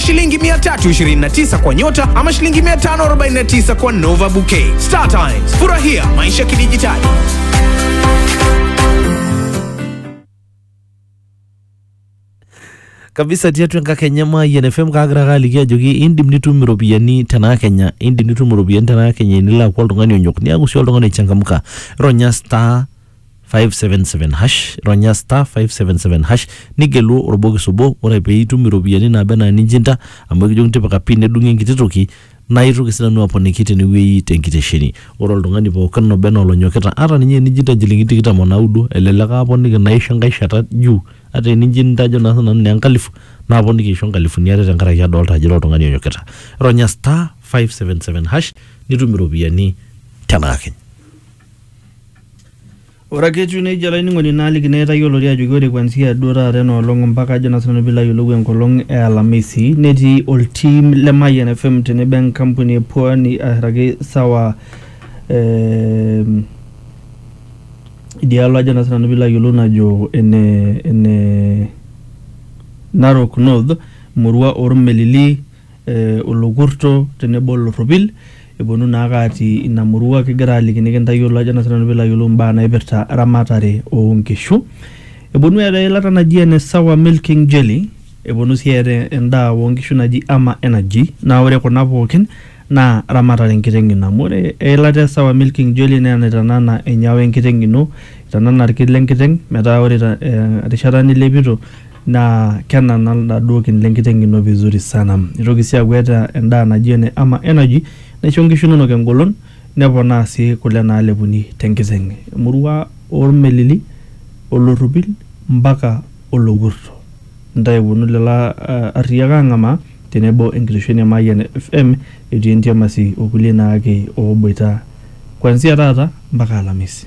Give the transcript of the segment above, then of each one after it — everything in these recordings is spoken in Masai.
shilingi 329 kwa nyota ama shilingi 549 kwa Nova Bouquet. Star Times, furahia maisha kidijitali. kabisa tiatua enkakenya mayian fm kaagira ake aliki ajoki indim nitum iropiyiani tenaa kenya indim nitum iropiyiani tenaa kenya enilo aaku oltung'ani onyok niaku sii oltung'ani oichangamka ronya star 577 hash ronya star 577 hash nigelu orbokis obo ore pee itum iropiyiani naaba enaa ninjinda amu ekijoki tipika pin nedung'i enkiti toki naa itoki sinanu aponiki tenewueji tenkitesheni ore oltung'ani pookin oba enaa olonyokita ata ninye enijinda inchilingini tikitam onaudo elelek aaponiki naisho enkae shata juu ata enijinda ajo naa sinanu naa enkalifu naaponiki aisho inkalifuni are tenkaraki adolta ajo ira oltung'ani onyokita ronya star 577 hash nitum iropiyiani tenakakenya. Ore ake etiu nejia olainining'oni naaliki naa itayioloki ajoki ore kuanzia duo taata ena olong ompaka ajo naa sinanu piilo ayiolou enkolong e alamisi netii oltim le Mayian FM tenebo enkampuni e Pwani airraki sawa eh idialo ajo naa sinanu piilo ayiolou najo ene ene Narok North murua ormelili eh, olokurto tenebo olorropil eponu naake atii ina murua kigira aliki nikintayiolo ajo naa sinanu piilo ayiolou imbaa naipirta ramatare onkishu eponu eeta eilata naji ene sawa milking jelly eponu sii eeta endaa onkishu naji ama energy naa ore kuna pookin naa ramatare enkiteng ino amu ore eilata e sawa milking jelly naa enaitanana enyawa enkiteng ino itanana irki lenkiteng metaa ore ta- eh, erishata nilepito naa kenana laduo kin le nkiteng' ino vizuri sana. Nitoki sii aaku eeta endaa naji ene Ama Energy naisho nkishu inonok engolon neponaa sii kule naalepuni te nkiteng'. Emurua oormelili, olorropil mpaka olokurto. Intae eponu lelo arriyiak aang'amaa tenebo enkitesheni e Mayian FM etii entiamasi o kulie naake ooboita kuanzia taata mpaka alamisi.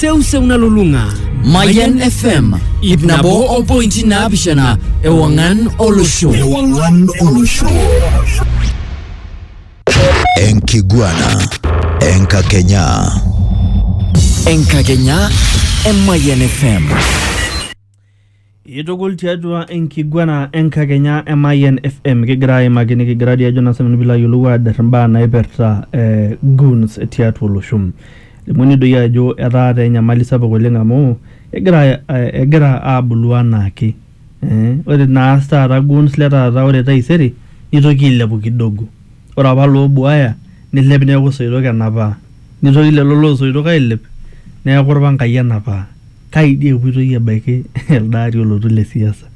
seuseu nalulung'a Mayan FM ip nabo o pointi naapishana ewang'an olosho Ewang'an olosho. Enkiguana. Enkakenya. enkakenya e Mayan FM Itukul tiatua enkiguana enkakenya e Mayian FM kigira aimaki nikigira dii ajo naa sinanu piilo ayiolou aader imbaa naipirta eh, goons tiatua olosho. Elimuni doi ajo etaa taa enyamali sapuk oleng amu egira eh, egira aabulu anaake eh, ore naas taata goons le taata ore taisere nitoki ailepu kidogo. Ore apa loobuaya neilep neaku soitok enapaa, neitoki lelo loo soitok ailep neaku lpangai enapaa. Kai dei epoitoi abaiki alde ari olotu le siasa.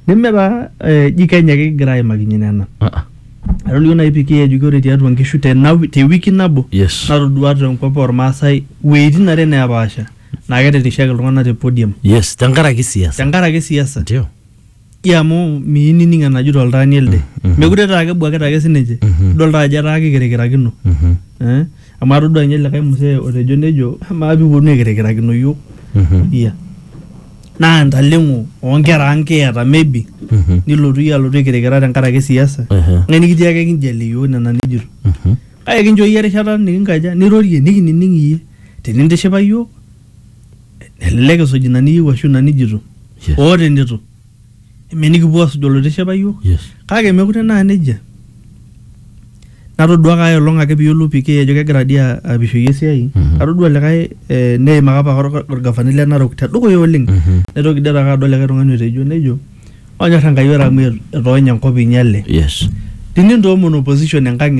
Neme taa eji Kenya ake kigira aimakinye nena. Atolikio nai PK ajoki ore tiatua nkishu te wiki nabo natodua te nkop olmaasai wuetin are neepaasha naa ketirrishaki iltung'ana te podium tenkaraki siasa. Ji amu miyieu nining enajoito oltaani elde mekure taa kebuakita ake sininche idol taa ajo etaa kikirikirakino Mhm. Eh, amu atodua ninye likae mzee otejo nejo amaa piiponu aikirikirakino iyiok Mhm. iya naa ntaleng'o oonkera ang kiata maybe Mhm. nilotu iyie alotu aikirikira tenkaraki siasa Ehe. ng'ae nikitii ake kinjalie iyiok nena nijito Mhm. kake kincho iyie erishata nikinkaja nirorie nikinining iyie tinintishipa iyiok elelek isuj ina niyieu ashu ina nijito Yes. oo tenitu eme nikipuo asuj oloitiship ayiok Yes. kake mekure naa nejia natodua kae olong ake piyiolou PK ajo kegira dii a- apishoyie esiai Mhm. atodua likae eh, neimaka apa or- orgavanai le Narok tedukuya oleng Mhm. naitoki dii taake adol likae tung'ani otejo nejo onyorr Enkai ore amu et- etoonyo enkop inyale Yes. tinintoomono opposition enkang ino